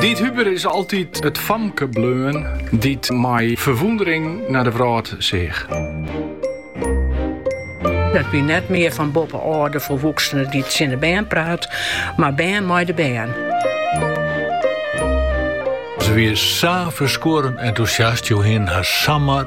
Diet Huber is altyd it famke bleun dy't mei ferwûndering naar de wrâld seach. Dat wie net mear fan boppe ôf de volwoeksene dy't tsjin de bern praat, mar bern mei de bern. Ze wie sa ferskuorren entûsjast, jo hien har samar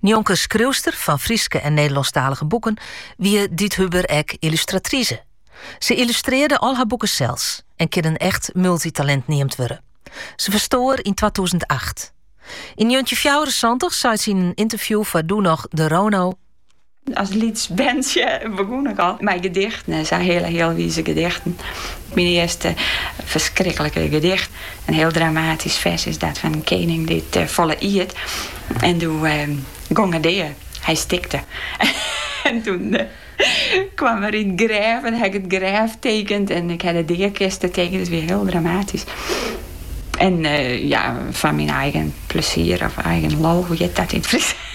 Njonken skriuwster fan Fryske en Nederlânsktalige boeken wie Diet Huber ek yllustratrize. Se yllustrearre al har boeken sels en kin in echt multitalint neamd wurde. Se ferstoar yn twatûzen acht. Yn njoggentjinhûndertfjouwerensantich seit sy yn in ynterview foar doe noch de Rono, As lyts berntsje begûn ik al mei gedichten en sa hiele healwize gedichten. Myn earste ferskriklikke gedicht, in hiel dramatysk fers, is dat fan in kening dy't folle iet en doe gong er dea. Hy stikte en doe kaam er yn it grêf en ha ik it grêf tekend en ik ha de deakiste tekend. It wie hiel dramatysk en ja, foar myn eigen plesier of eigen lol, hoe heart dat yn it Frysk?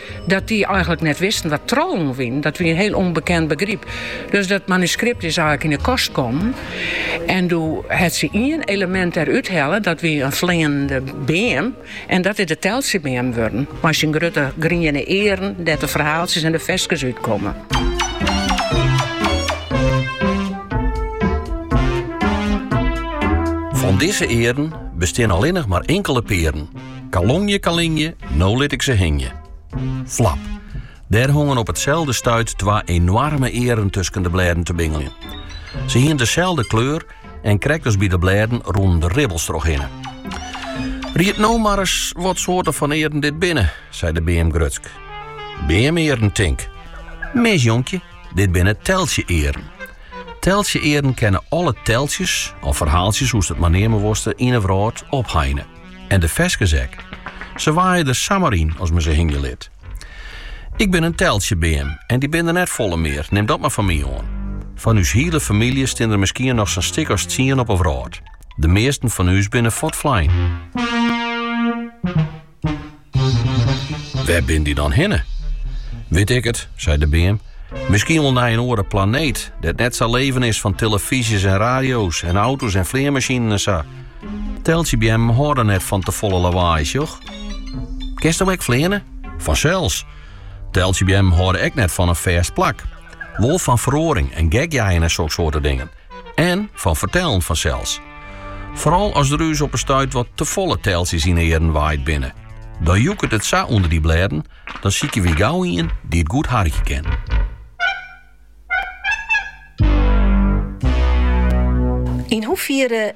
Dat dy eigenlik net wisten wat trollen wiene, dat wie in hiel ûnbekend begryp. Dus dat manuskript is eigenlik yn de kast kommen. En doe hat se ien elemint derút helle, dat wie in fleanende beam. En dat is de Teltsjebeam wurden, mei syn grutte griene earen, dêr't de ferhaaltsjes en de ferskes út komme. Fan dizze earen bestean allinnich mar inkele pearen. Kalongje, kalingje, no lit ik se hingje. Flap. Dêr hongen op itselde stuit twa enoarme earen tusken de blêden te bingeljen. Se hiene deselde kleur en krekt as by de blêden rûnen der ribbels trochhinne. Ried no mar ris wat soarte fan earen dit binne, sei de beam grutsk. Beamearen, tink. Mis, jonkje, dit binne teltsje-earen. Teltsje-earen kinne alle teltsjes, of ferhaaltsjes, hoe'tst it mar neame wolst, yn 'e wrâld opheine. En de ferskes ek. Se waaie der samar yn as men se hingje lit. Ik bin in teltsjebeam en dy binne der net folle mear, nim dat mar fan my oan. Fan ús hiele famylje stean der miskien noch sa'n stik as tsien op 'e wrâld. De measten fan ús binne fuortflein. Wêr binne dy dan hinne? Wit ik it, sei de beam. Miskien wol nei in oare planeet, dêr't net sa leven is fan telefyzjes en radio's en auto's en fleanmasjinen en sa. Teltsjebeammen hâlde net fan te folle lawaai, sjoch. Kinst no ek fleane? Fansels. Teltsjebeammen hâlde ek net fan in fêst plak. Wol fan feroaring en gekjeien en soksoarte dingen. En fan fertellen fansels. Foaral as der ús op 'e stuit wat tefolle teltsjes yn 'e earren waaid binne. Dan joeket it sa ûnder dy blêden, dan sykje wy gau ien dy't goed harkje kin. Yn hoefiere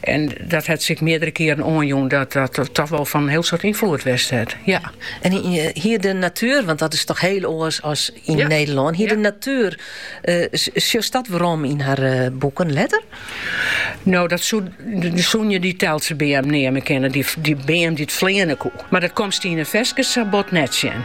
En dat hat se ek meardere kearen oanjûn dat dat toch wol fan in hiel soad ynfloed west hat. Ja. En hie de natuer, want dat is toch hiel oars as yn Nederlân, hie de natuer, sjochst dat werom yn har boeken letter? No, dat soene je dy Teltsjebeam neame kinne, dy beam dy't fleane koe. Mar dat komst yn de ferskes sa bot net sjen.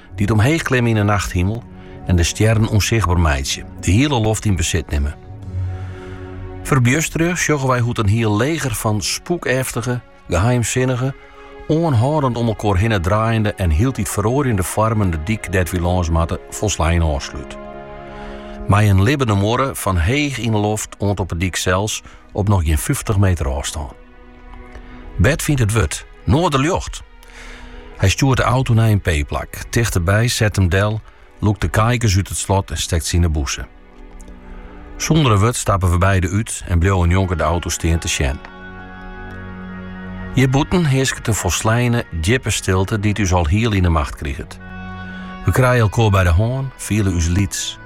Dy't omheech klimme yn 'e nachthimel en de stjerren ûnsichtber meitsje, de hiele loft yn besit nimme. Ferbjustere sjogge wy hoe't in hiel leger fan spûkeftige, geheimsinnige, oanhâldend om elkoar hinne draaiende en hieltyd feroarjende foarmen de dyk dêr't wy lâns moatte folslein ôfslút. Mei in libbene muorre fan heech yn 'e loft oant op 'e dyk sels op noch gjin fyftich meter ôfstân. Bert fynt it wurd, Noarderljocht! Hy stjoert de auto nei in p-plak. Tichteby set him del, lûkt de kaikens út it slot en stekt se yn de bûse. Sûnder in wurd stappe we beide út en bliuwe njonken de auto stean te sjen. Hjirbûten hearsket in folsleine, djippe stilte dy't ús al hiel yn 'e macht kriget. We krije elkoar by de hân, fiele ús lyts.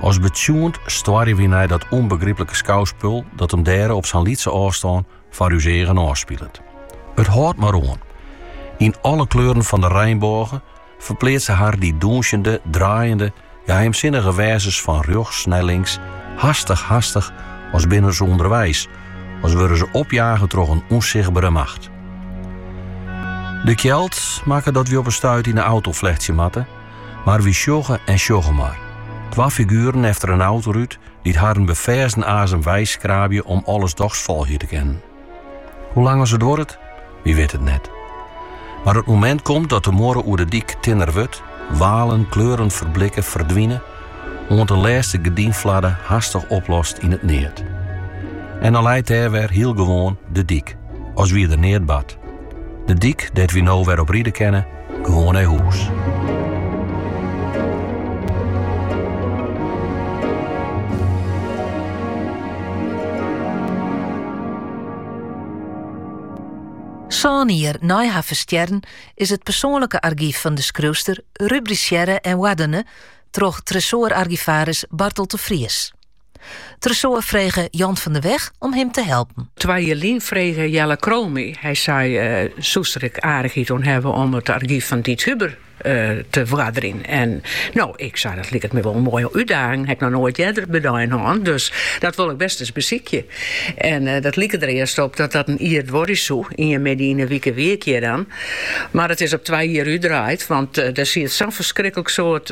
As betsjoend stoarje we nei dat ûnbegryplike skouspul dat him dêre op sa'n lytse ôfstân Foar ús eagen ôfspilet. It hâldt mar oan. Yn alle kleuren fan de reinbôge ferpleatse har dy dûnsjende, draaiende, geheimsinnige wêzens fan rjochts nei links, hastich, hastich, as binne se ûnderweis, as wurde se opjage troch in ûnsichtbere macht. De kjeld makket dat wy op in stuit yn 'e auto flechtsje moatte, mar wy sjogge en sjogge mar. Twa figueren efter in autorút, dy't harren beferzen azem weiskraabje om alles dochs folgje te kinnen. Hoe lang as it duorret? Wy witte it net. Mar it momint komt dat de muorre oer de dyk tinner wurdt, walen, kleuren ferblikke, ferdwine, oant de lêste gerdynflarde hastich oplost yn it neat. En dan leit dêr wer hiel gewoan de dyk, as wie der neat bard. De dyk dêr't wy no wer op ride kinne, gewoan nei hûs. Sân jier nei har ferstjerren is it persoanlike argyf fan de skriuwster rubrisearre en oardene troch Tresoar-argivaris Barteld de Vries. Tresoar frege Jant van der Weg om him te helpen. Twa jier lyn frege Jelle Krol my, hy sei, soest der ek aardichheid oan hawwe om it argyf fan Diet Huber te oarderjen? En no, ik sei, dat liket my wol in moaie útdaging, haw ik noch noait earder by de ein hân, dus dat wol ik bêst ris besykje. En dat like der earst op dat dat in jier duorje soe, ien middei yn 'e wike wie ik hjir dan, mar it is op twa jier útdraaid, want der siet sa'n ferskriklik soad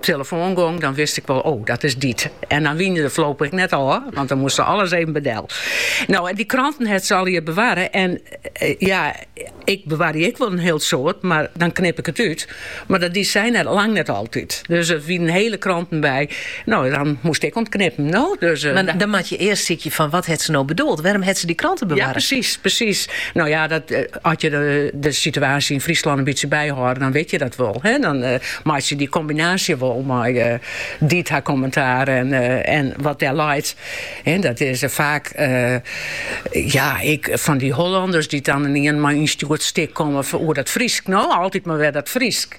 telefoan gong, dan wist ik wol, oh, dat is Diet. En dan wiene we foarlopich ek net ôf, want dan moast se alles even bydel. No, en dy kranten hat se allegear bewarre en eh, ja, ik bewarje ek wol in hiel soad, mar dan knip ik it út. Mar dat die sy net, lang net altyd. Dus der wiene hiele kranten by. No, dan moast ik oan 't knippen. No, dus, eh, mar dan moat je earst sykje fan wat hat se no bedoeld? Wêrom hat se dy kranten bewarre? Ja, presys, presys. No ja, dat, eh, As je de situaasje yn Fryslân in bytsje byhâlde, dan wit je dat wol. Dan meitsje je dy kombinaasje wol mei Diet har kommintaar en wat dêr leit. Dat is faak ja, ek fan dy Hollanners dy't dan ynien mei in ynstjoerd stik komme oer dat Frysk. No, altyd mar wer dat Frysk.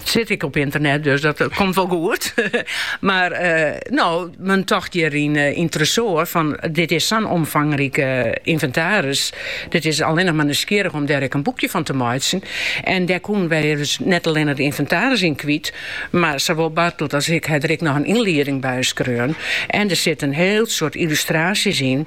It sit ek op ynternet, dus dat komt wol goed. Mar no, men tocht hjir yn Tresoar fan, dit is sa'n omfangrike ynventaris, dit is allinnich mar nijsgjirrich om dêr ek in boekje fan te meitsjen. En dêr koenen wy dus net allinne de ynventaris yn kwyt, mar sawol Barteld as ik ha der ek noch in ynlieding by skreaun. En der sit in hiel soad yllustraasjes yn.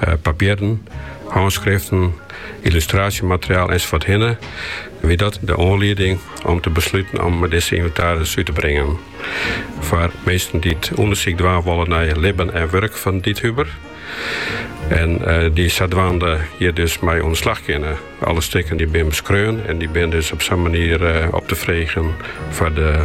eh, papierren, hânskriften, yllustraasjemateriaal ensafuorthinne, wie dat de oanlieding om te besluten om dizze ynventaris út te bringen. Foar minsken dy't ûndersyk dwaan wolle nei it libben en wurk fan Diet Huber. En eh, dy't sadwaande hjir dus mei oan 'e slach kinne. Alle stikken dy binne beskreaun en dy binne dus op sa'n manier eh, op te freegjen foar de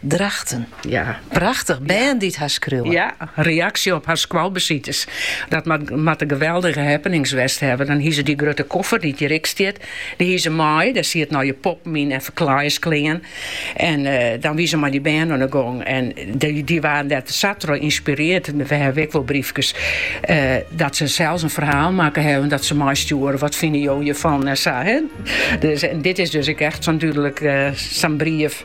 Drachten. Ja. Prachtich, bern dy't har skriuwe. Ja, reaksje op har skoalbesites. Dat moatte geweldige happenings west hawwe. Dan hie se dy grutte koffer dy't hjir ek stiet, dy hie se mei. Dêr sieten allegear poppen yn en ferklaaiersklean. En dan wie se mei dy bern oan de gong. En dy waarden dêr sa troch ynspirearre, we hawwe ek wol bryfkes, dat se sels in ferhaal makke hawwe dat se meistjoere, wat fine jo hjirfan en sa. Dit is dus ek echt sa'n dúdlik sa'n brief.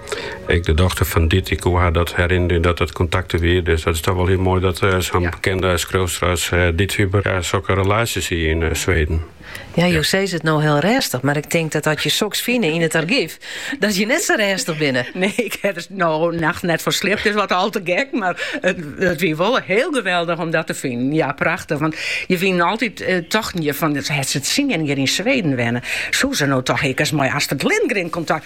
Ek de dochter fan Diet dy koe har dat herinnerje dat it kontakt der wie. Dus dat is toch wol hiel moai dat sa'n bekende skriuwster as Diet Huber sokke relaasjes hie yn Sweden. Ja, jo sizze it no hiel rêstich, mar ik tink dat as je soks fine yn it argyf, dat je net sa rêstich binne. Nee, ik ha der no nacht net fan sliept, is wat al te gek, mar it wie wol hiel geweldich om dat te finen. Ja, prachtich, want je wienen altyd tochten je fan, hat se tsien jier yn Sweden wenne, soe se no toch ek ris mei Astrid Lindgren kontakt.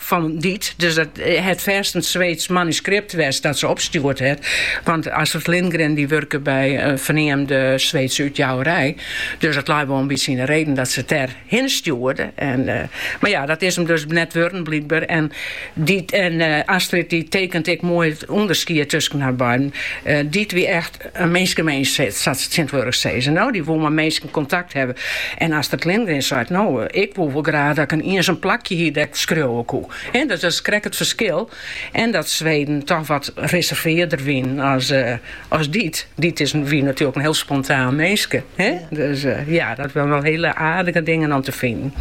fan Diet. Dus dat hat fêst in Sweedsk manuskript west dat se opstjoerd hat. Want Astrid Lindgren dy wurke by in ferneamde Sweedske útjouwerij. Dus it lei wol in bytsje yn de reden dat se it dêr hinne stjoerde. En, uh, mar ja, dat is him dus net wurden blykber. En, Diet, en uh, Astrid dy tekent ek moai it ûnderskied tusken har beiden. Uh, Diet wie echt In minskeminsk, sa't se tsjintwurdich sizze. No, dy woe mei minsken kontakt hawwe. En Astrid Lindgren seit, no, ik woe wol graach dat ik in iensum plakje hie dêr't ik skriuwe koe. He, dat is krekt it ferskil. En dat Sweden toch wat reservearder wiene as Diet. Diet is, wie natuerlik in hiel spontaan minske. He, dus ja, dat wiene wol hiele aardige dingen om te finen.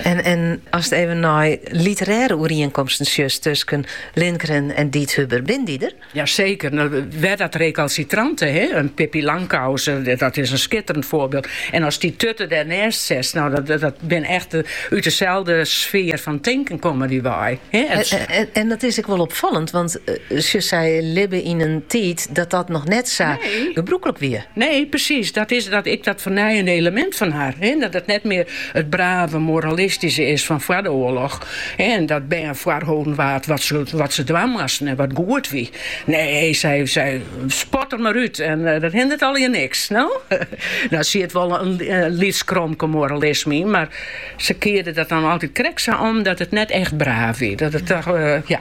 En, en ast even nei literêre oerienkomsten sjochst tusken Lindgren en Diet Huber, binne dy der? Ja seker, no wer dat rekalsitrante, he, in Pippi Langkous, dat is in skitterend foarbyld. En ast dy Tutte dêrnêst setst, no dat, dat bin echt út deselde sfear fan tinken komme dy wei. He, en, en, en, dat is ek wel opfallend, want uh, sy libben yn in tiid dat dat noch net sa, nee, gebrûklik wie. Nee, presys. Dat is dan ek dat fernijende elemint fan har. He, dat it net mear it brave, moralistyske is fan foar de oarloch. En dat bern foarholden waard wat se dwaan moasten en wat goed wie. Nee, sei sy, spat der mar út en dat hindert allegear niks. No? Dêr siet wol in lyts kromke moralisme yn, mar se kearde dat dan altyd krekt sa om dat it net echt braaf wie. Dat it toch, ja.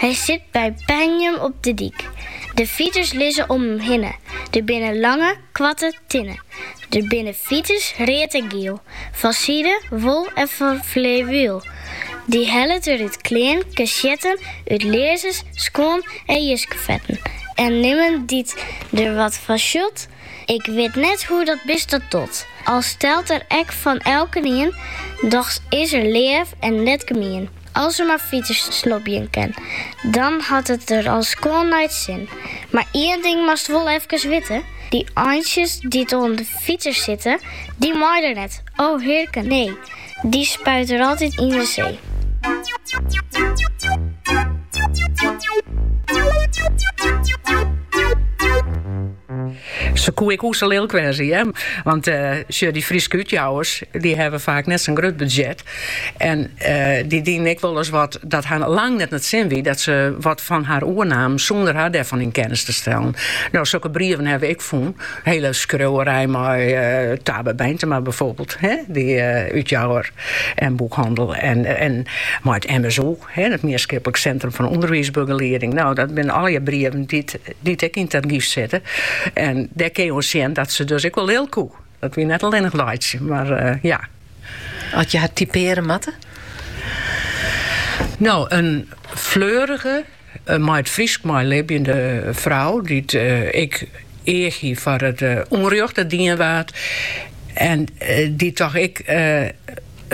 Hy sit by Penjum op de dyk. De fiters lizze om him hinne. Der binne lange, koarte tinne. Der binne fiters, read en giel, fan side, wol en fan flewiel. Dy hellet er út klean, kesjetten, út learzens, skuon en jiskefetten en nimmen dy't der wat fan sjut, Ik wit net hoe't dat bist dat docht. Al stelt er ek fan elkenien, dochs is er leaf en net gemien. As er mar fiters snobje kin, dan hat er it al skoan nei 't sin. Mar ien ding moatst wol efkes witte, dy eintsjes dy't oan de fiters sitte, dy mei er net, o hearken, nee, dy spuit er altyd yn de see. Se koe ek o sa lilk wêze, hear. Want sjoch, dy Fryske útjouwers, dy hawwe faak net sa'n grut budzjet. En dy dienen ek wolris wat dat har lang net nei 't sin wie dat se wat fan har oernamen sûnder har dêrfan yn kennis te stellen. No, sokke brieven hawwe we ek fûn. Hiele skriuwerij mei Tabe Beintema byfoarbyld, hear, dy útjouwer en boekhannel en mei it MSU. It Mienskiplik Sintrum fan Underwiisbegelieding. No, dat binne allegear brieven dy't ek yn it argyf sitte. En dêr kin je oan sjen dat se dus ek wol lilk koe. Dat wie net allinnich laitsje, mar ja. As je har typearje moatte? No, in fleurige, mei it Frysk meilibjende frou, dy't ek each hie foar it ûnrjocht dat dien waard en dy't toch ek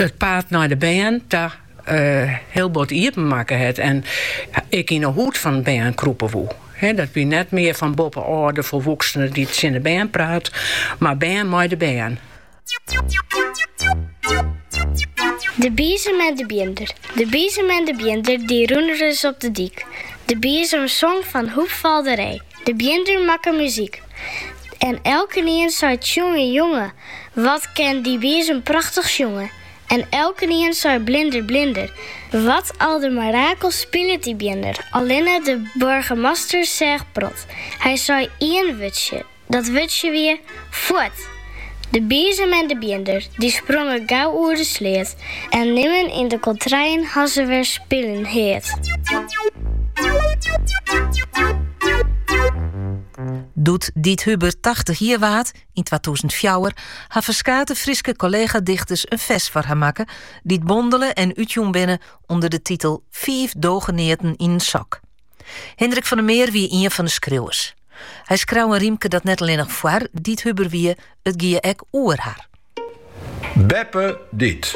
it paad nei de bern ta. hiel bot iepen makke hat en ek yn 'e hûd fan in bern krûpe woe. Dat wie net mear fan boppe-ôf de folwoeksene dy't tsjin de bern praat, mar bern mei de bern. De biezem en de bjinder. De biezem en de bjinder dy rûnen ris op de dyk. De biezem song fan hoepfalderij, de bjinder makke muzyk. En elkenien sei tsjonge jonge, Wat kin dy biezem prachtich sjonge! En elkenien sei blinder, blinder. Wat aldermirakelst spilet dy bjinder, allinne de boargemaster seach prot. Hy sei ien wurdsje, dat wurdsje wie, Fuort! De biezem en de bjinder, dy sprongen gau oer de sleat en nimmen yn de kontreien hat se wer spyljen heard. Doe't Diet Huber tachtich jier waard, Yn twatûzen fjouwer ha ferskate Fryske kollegadichters in fers foar har makke, dy't bondele en útjûn binne ûnder de titel Fiif dogeneaten yn in sok. Hindrik van der Meer wie ien fan de skriuwers. Hy skreau in rymke dat net allinnich foar Diet Huber wie, it gie ek oer har. Beppe Diet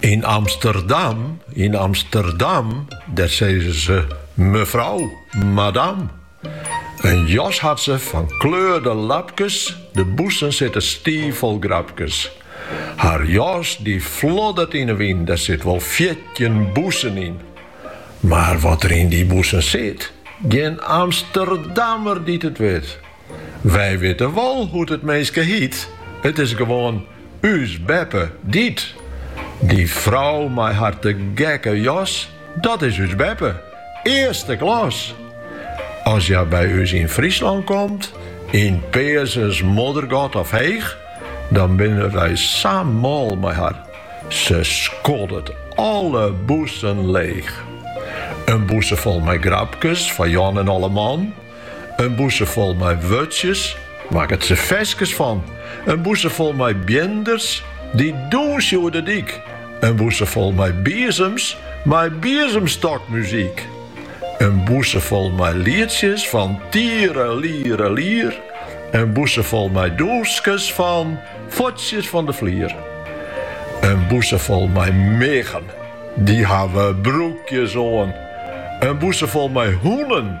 yn Amsterdam, yn Amsterdam, dêr sizze se mefrou, madam. In jas hat se fan kleurde lapkes, de bûsen sitte stiiffol grapkes. Har jas dy floddert yn 'e wyn, der sit wol fjirtjin bûsen yn. Mar wat der yn dy bûsen sit, gjin Amsterdammer dy't it wit. Wy witte wol hoe't it minske hiet, it is gewoan ús beppe Diet. Dy frou mei har te gekke jas. Dat is ús beppe, earste klas! As hja by ús yn Fryslân komt, yn Peazens, Moddergat of Heech, dan binne wy sa mâl mei har. Se skoddet alle bûsen leech. In bûse fol mei grapkes foar Jan en alleman. In bûse fol mei wurtsjes, makket se ferskes fan. In bûse fol mei bjinders, dy dûnsje oer de dyk. In bûse fol mei biezems, mei biezemstokmuzyk. In bûse fol mei lietsjes fan tierelierelier. In bûse fol mei dûnskes fan fuotsjes fan de flier. In bûse fol mei miggen, dy hawwe broekjes oan. In bûse fol mei hûnen.